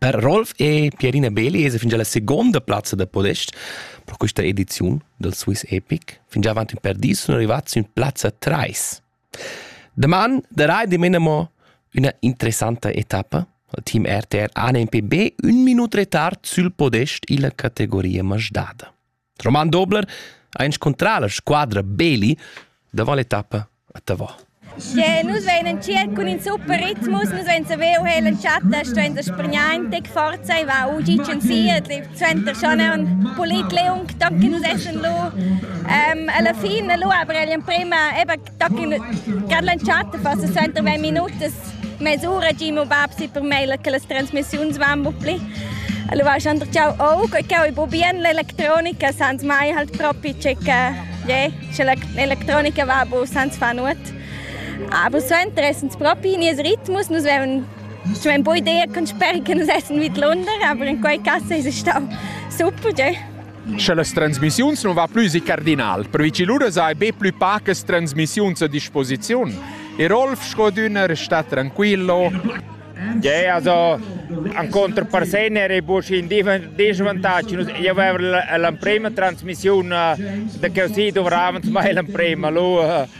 Per Rolf e Pierina Beli es fingià la segonda plazza da podest pro quista ediziun dal Swiss Epic. Fingià avant ün per dis sun rivats sün plazza 3. Daman darai dimena mo üna interessanta etappa. Il team RTR ANMPB ün minut retard sül podest illa categoria masdada. Roman Dobler ha inscuntrà la squadra Beli davant l'etappa a Tavò. Ja, nus veinen circ cun in super ritmus, nus vein saver uhel en chatta, stuein da spregnar in tec forza, e va ugi cen siet, suenter schon è un pulit leung, danke nus essen lu. Um, alla fin lu aber emprima, eba Car l'entschatta fa 60 minutas mesura gi mo bab si per mei che las transmissiuns van bu pli. Allora schon ciao oh che che bu bien l'elettronica sans mai halt proprio che je che l'elettronica va bu sans fa nuot. Aber so interessant proprio nies Rhythmus, nus veven Ich meine, bei dir kannst du sperren, dass es nicht lohnt, aber in quei Kasse ist es auch super, gell? Sche las transmissiuns non va plü si cardinal, pervi che lura sai be plü pacas transmissiuns a disposiziun. E Rolf Schrödüner sta tranquillo. Yeah, also an controparsener è busch in disvantaggi. Io avevo l'emprima trasmissione eh, da così dovravamo mai l'emprima. Lui eh,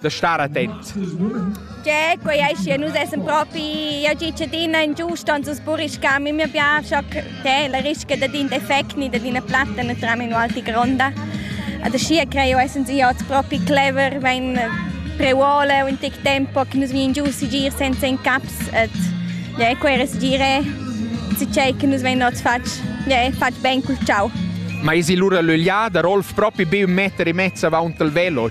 da star attent. Tge, quei ei schi, nus essen propi ja cittadina ingiusta, uns buriscam, mi abbiamo schon te la risca da din defecti, da din platta, ne tram in alti gronda. Also schier creo essen sie oz propi clever, wenn preuole un tic tempo che nus vien giù si gir senza in caps et ja quere si gire si cei che nus ven oz fatg ja fatg ben col ciao. Ma isi lura l'ögliada, Rolf propi be un meter e mezza avanti il velo,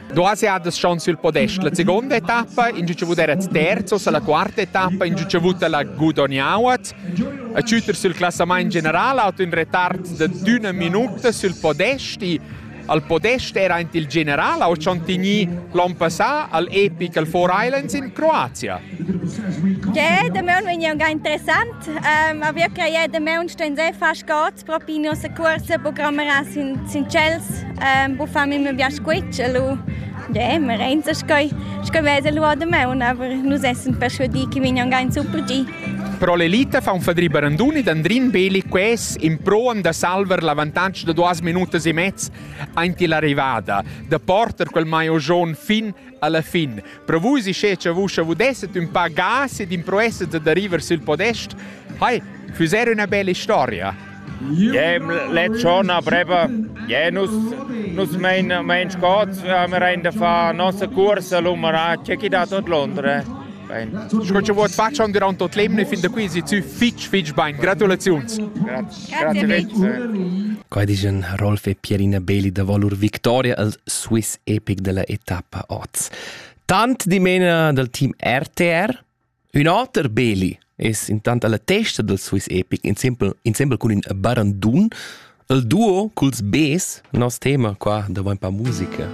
Duas jadas schon sul podest la seconda etappa, in giu avut era terzos alla quarta etappa, in giu avut la gudognauat. A ciuter sul classament general hat un retard de d'una minuta sul podest e al podest era ant il general ha schon tini l'on passà al Epic al Four Islands in Croazia. Ja, der Mön war ja ganz interessant. Ähm, aber wir creien, der Mön stehen sehr fast gut. Propi nossa cuorsa programmerà sin, sin tschels, ehm, buffam in bia squitsch e lu, yeah, merenza sco, sco vesa lu ord maun, aber nus essan perschuadì che vegnan gain super gi. Pro l'elita fa un fadri Baranduni d'Andrin Beli ques in proan da salver l'avantatg da duas minutas e mezz aint l'arrivada, da porter quel maio John fin Alla fin, pro vus isce cha vus avudesset ün pa gas ed improesset da river sül podest, hai, füser üna bella storia. Jem let schon a Breba. Je nus, nus mein, mein Scots, haben rein da far nossa cursa l'umaraccia chi dat tot Londra. Bene. Sco che vuoi facciamo durante tot l'emne fin da qui si zu fitch fitch bain. Gratulaziuns. Grazie, grazie mille. Quai dice Rolf e Pierina Beli da Volur Victoria als Swiss epic della etappa oz. Tant dimena dal team RTR, ün oter Beli es intant alla testa del Swiss Epic insempel, insempel cun ün barandun, il duo culs Bs, nos tema qua davanti pa musica.